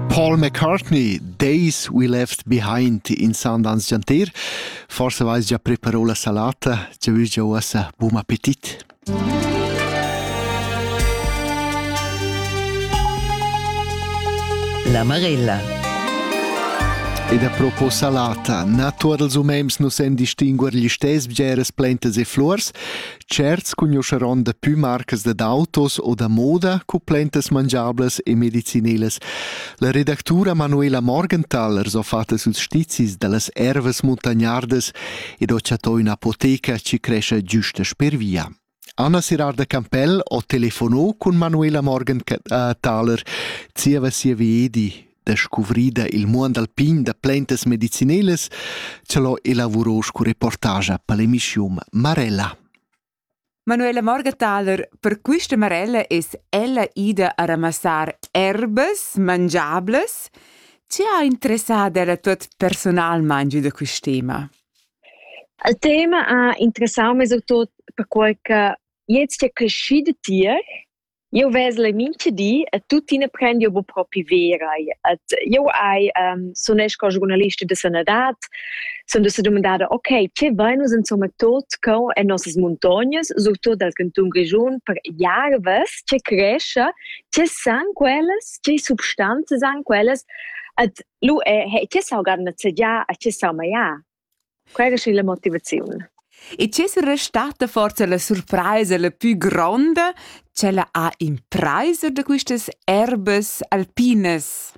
Paul McCartney, Days We Left Behind in sound ans giantir. Forse vais già preparò la salata, ci vus già uossa buon appetit. La Marella. Ed a propos salata, naturals umems nus en distinguer gli stes bgeres plantas e flors, Tscherts cugnuscheron dapü marcas dad autos o da moda cu plantas mangiablas e medicinelas. La redactura Manuela Morgenthal ars ho fat süls stizis da las ervas muntagnardas ed ho chattò ün'apoteca chi crescha güsta sper via. Anna Sirarda Campell ho telefonò cun Manuela Morgenthaler zieva sia viedi Descuvrida il muond alpin da plantas medicinelas, cha l'ho elavurò scu reportagia pel emischium Marella. Manuela Morgenthaler, per quista Marella es ella ida a ramassar erbas mangiablas. Chi ha interessà la tuot personalmaing da quist tema? Il tema ha interessà mez o tot perquai che jetzt è creschido tier Jeu vesel mintga di e tuttina prendiu bu propi verai. Et jeu hai ehm sunesch co giurnalista da sanadad, sun dusa dumandada okay, che vain nus insomma tot co en nossas muntognas, surtut dal cantun Grischun, per jarvas che crescha, che san quellas, che substanzas han quellas, et lu è che saugan nezegiar a che saumajar. Quella è la motivaziun. E c'è restata forse la surpresa la più gronda, quella ha impresa da quistas erbes alpines?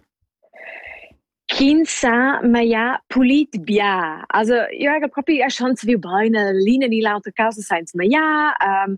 Ch'ins sa maia pulit bia. Also, io ega propi a chans viu baina l'ina ni l'autra causa sainza maiar. Um,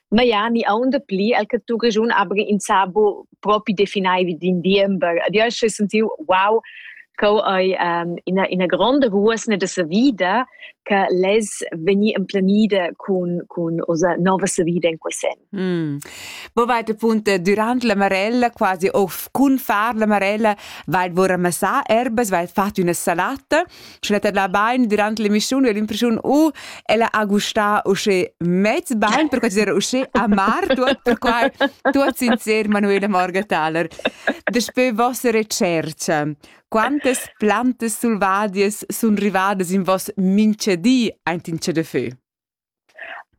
ma ja ni aunda pli el che tu regiun abri insabo propi definaivi din diember ad io sche sentiu wow co ei um, ina ina gronda ruosna de sa vida che les veni emplenida cun cun osa nova sa vida in quesen mm. Bo vai de punte durant la marella quasi of cun far la marella vai vor amassar erbas vai fat una salata schnettada bain durant l'emissiun e l'impressiun u ella ha gustà usche mez bain, per considerar usche amar tuot, per quai tuot sincer Manuela Morgenthaler. Daspö vossa recerca, quantas plantas selvadias sun rivadas in voss minchedi aint in chadafö?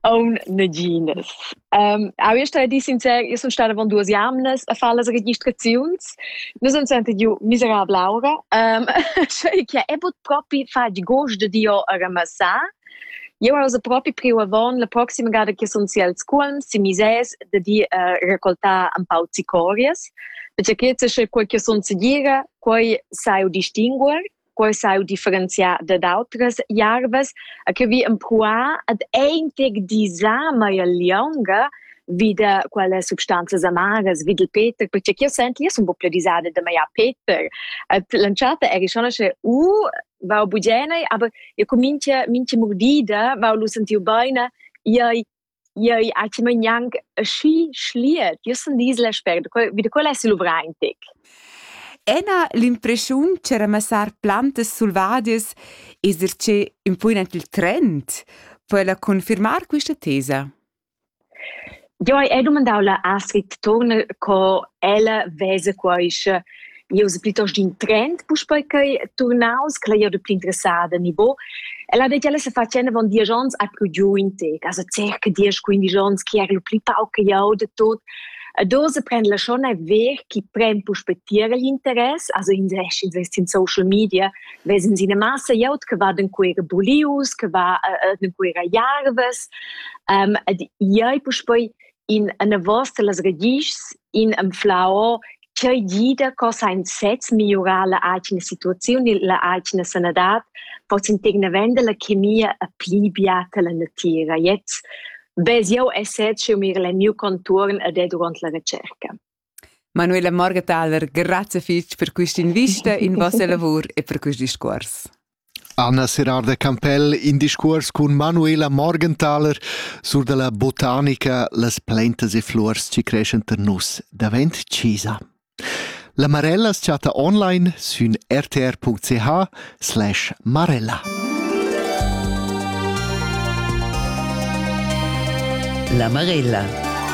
Aun naginas. Ähm, auch io stai di sincer, io sun stada avant duas jamnas a far las registraziuns. Nus han sentit giu miserabla aura, ähm, sche che è but propi fatg gust de io a ramassar. Io ausa propi priu avon la proxima gada che sun si al scuolm si mises de di uh, raccoltar un pau zicorias, perché che se quel che sun segira, quei sai u distinguer. quei sau differenziar dad outras jarvas a che vi empruar ad eintig disar mai a lionga vi da quelle substanzas amaras vi del peter perché che io senti io sono un po' più disada da mai a peter lanciata eri schon sche u va bugenei aber io comincia mince mordida va lu sentiu beina iai Jeu atgema gnanc aschi schliet. Jeu sun disla spert, vi da quella sil luvraintic. Ena l'impreschiun che ramassar plantas selvadias esser che ün po in il trend per la confirmar questa tesa? Jo, hai dumandau la Astrid Turner co ella vesa quaische Eu es plitost in trend puspei ch'ei turnaus, quella ei da pli interessada nivo. Ella ha detg, ella se facenda avon diesch ons ha pru giu in tec, also circa diesch, quindisch ons, chi era lu pli pauc che jau de tot. A dose prendla schon ein ver chi pren puspei tier igl interess, also in ins vest in social media, vesen sie eine Masse jaut, che va den queere Bulius, che va äh, den queera Jarves. Ähm, ed iei puspei in eine vostra las regischs in anflau ch'ei gida co sein sez migliurar la atgna situaziun e la atgna sanadad, possen tegna venda la chemia a pli biata la natira. Jetzt bez jau esser eu mir el miu conturn a de durant la recerca. Manuela Morgataler, grazie fitg per questa invista in vostra lavor e per questi discorsi. Anna Serrar da Campell in discuors cun Manuela Morgenthaler sur dalla botanica Las plaintas e fluors chi creschan tar nus davent chisa. La Marella as chatta online sün rtr.ch slash marella. La Marella